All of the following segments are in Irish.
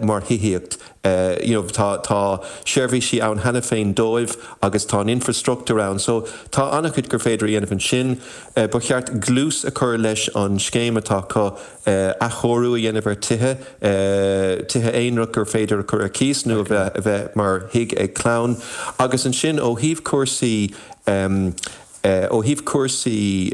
mar thithíocht, you know tá, tá seirbhísí ann cheana féin dóibh agus tá an infreastruchtúr ann so tá an-chuid gur féidir a dhéanamh ansin. Ba cheart dlús a chur leis an scéim atá acu, athchóiriú a dhéanamh ar thithe, tithe aonrach gur féidir a chur ar cíos nó a bheith, a bheith mar thigh ag clann agus ansin ó thaobh cúrsaí, Ó thaobh cúrsaí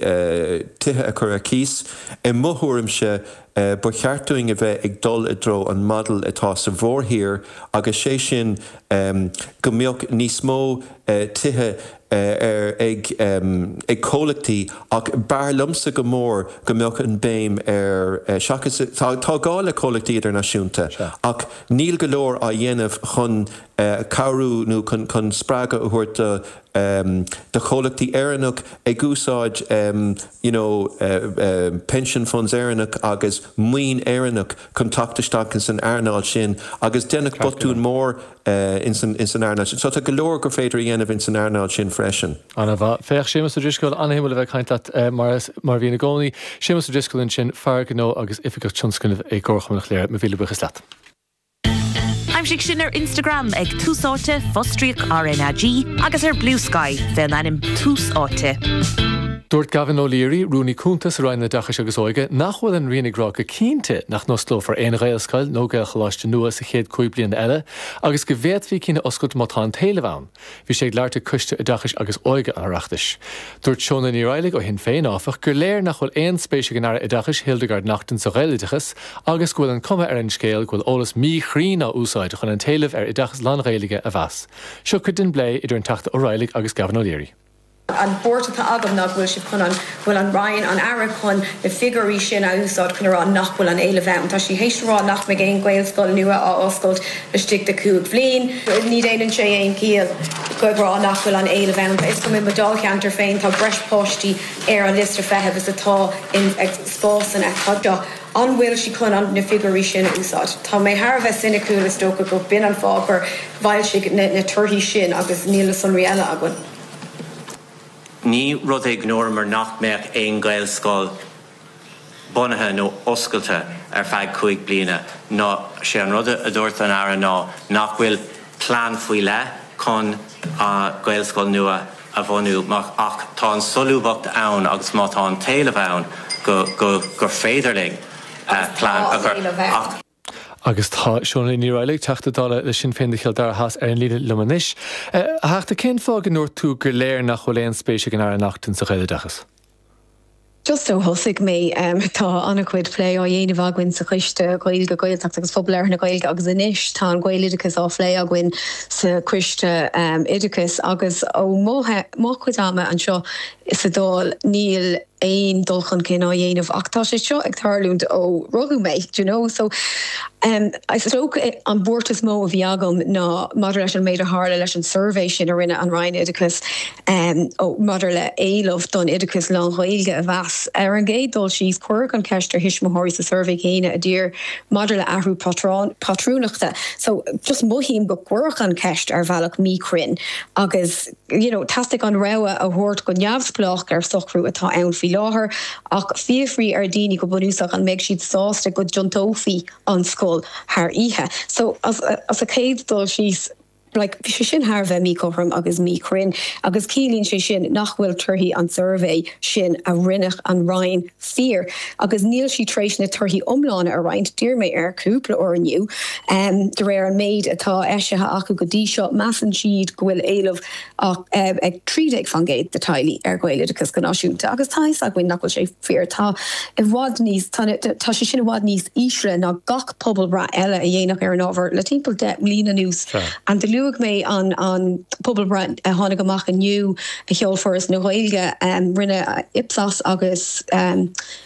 tithe a chur ar cíos, i mo thuairimse, ba cheart dúinn a bheith ag dul i dtreo an Model atá sa mhórthír agus sé sin go mbeadh níos mó tithe ag comhlachtaí ach b'fhearr liomsa go mór go mbeadh an béim ar, seachas, tá gá le comhlachtaí idirnáisiúnta ach níl go leor á dhéanamh chun cabhrú nó chun spreagadh a thabhairt do de chomhlachtaí Éireannach ag úsáid you know pension funds Éireannach agus maoin Éireannach chun teacht isteach ins an earnáil sin agus deineadh botún mór ins an earnáil sin so tá go leor gur féidir a dhéanamh ins an earnáil sin freisin. Ana mhaith. Féach, a Shéamais Uí Drisceoil, ana-shuimiúil a bheith ag caint leat mar a bhíonn i gcónaí. Séamus Ó Drisceoil ansin, fear gnó agus oifigeach tionscnamh i gComharchumann Chléire. Mo mhíle buíochas leat. Aimsigh sinn ar Instagram ag Tús Áite, fostríoc RnaG, agus ar Bluesky fé an ainm Tús Áite. Dúirt Gavin O'Leary, Rúnaí Cúnta sa Roinn Oideachais agus Óige, nach bhfuil an Roinn ag rá go cinnte nach n-osclófar aon Ghaelscoil nó Gaelcholáiste nua sa chéad cúig bliana eile agus go bhféadfaí cinn a oscailt má tá an t-éileamh ann. Bhí sé ag labhairt ag Coiste Oideachais agus Óige an Oireachtais. Dúirt Shónagh Ní Raghallaigh ó Shinn Féin, áfach, gur léir nach bhfuil aon spéis ag an Aire Oideachais, Hildegarde Naughton sa Ghaeloideachas agus go bhfuil an cuma ar an scéal go bhfuil eolas míchruinn á úsáid chun an t-éileamh ar oideachas lán-Ghaeilge a mheas. Seo cuid den bplé idir an Teachta Ó Raghallaigh agus Gavin O'Leary. An port atá agam ná go bhfuil siad chun an, go bhfuil an Roinn, an Aire chun na figiúirí sin a úsáid chun a rá nach bhfuil an éileamh ann. Tá sí tar éis a rá nach mbeidh aon Ghaelscoil nua á oscailt laistigh de cúig bliain. Ní dhéanann sé aon chiall a rá nach bhfuil an éileamh ann. Tá 'fhios agam i mo Dáilcheantar féin tá breis páistí ar an liosta feithimh is atá ag spásanna. An bhfuil sí chun na figiúirí sin a úsáid? Tá mé thar a bheith soiniciúil, is dócha gurb in an fáth gur foilsíodh na torthaí sin agus níl na sonraí eile againn. Ní rud é go ndúramar nach mbeadh aon Ghaelscoil bunaithe nó oscailte ar feadh cúig bliana, nó sé an rud a dúirt an Aire ná nach bhfuil plean faoi leith chun Gaelscoil nua, a bhunú ach tá an tsolúbthacht ann agus má tá an t-éileamh ann gur féidir linn plean a chur. Agus tá Shónagh Ní Raghallaigh, Teachta Dála le Sinn Féin do Chill Dara Theas ar an líne liom anois. A Theachta, cén fáth go ndúirt tú gur léir nach bhfuil aon spéis ag an Aire Naughton sa Ghaeloideachas? Just ó thosaigh mé, tá an-chuid plé á dhéanamh againn sa Choiste Gaeilge, Gaeltachta agus Phobal Labhartha na Gaeilge agus anois tá an Gaeloideachas á phlé againn sa Choiste Oideachais agus ó mo chuid ama anseo sa Dáil níl aon dul chun cinn á dhéanamh ach tá sé seo ag tarlúint ó rugadh mé d'you know so is dócha an bhuairt is mó a bhí agam ná maidir leis an méid a tharla leis an suirbhé sin a rinne an Roinn Oideachais Maidir le héileamh don oideachas lán-Ghaeilge a mheas, ar an gcéad dul síos, cuireadh an cheist ar thuismitheoirí sa suirbhé céanna a d'iarr maidir le athrú pátrúnachta, so just mothaím gur cuireadh an cheist ar bhealach míchruinn agus you know theastaigh an rogha a thabhairt go neamhspleách ar socrú atá ann faoi láthair ach fiafraíodh ar dhaoine go bunúsach an mbeidh siad sásta go dtiontófaí an scoil thar oíche, so as a chéad dul síos. like, bhí sé sin thar a bheith míchothrom agus míchruinn agus ciallaíonn sé sin nach bhfuil torthaí an tsuirbhé sin a rinne an Roinn fíor agus níl siad tar éis na torthaí iomlána a roinnt, d'iarr mé air cúpla uair inniu, de réir an méid atá eisithe acu go dtí seo, measann siad go bhfuil éileamh Ach ag 13% de theaghlaigh ar Ghaeloideachas go náisiúnta, agus tá a fhios againn nach bhfuil sé fíor, tá i bhfad níos, tá sé sin i bhfad níos ísle ná gach pobalbhreith eile a déanadh ar an ábhar le timpeall deich mbliana anuas. And luaigh mé an an pobalbhreith a tháinig amach inniu a sheol Foras na Gaeilge, rinne Ipsos agus.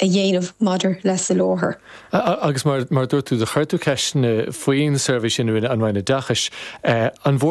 a dhéanamh maidir le soláthar. Agus mar a dúirt tú, chuir tú ceist faoin suirbhé sin a rinne an Roinn Oideachais. An bhfuair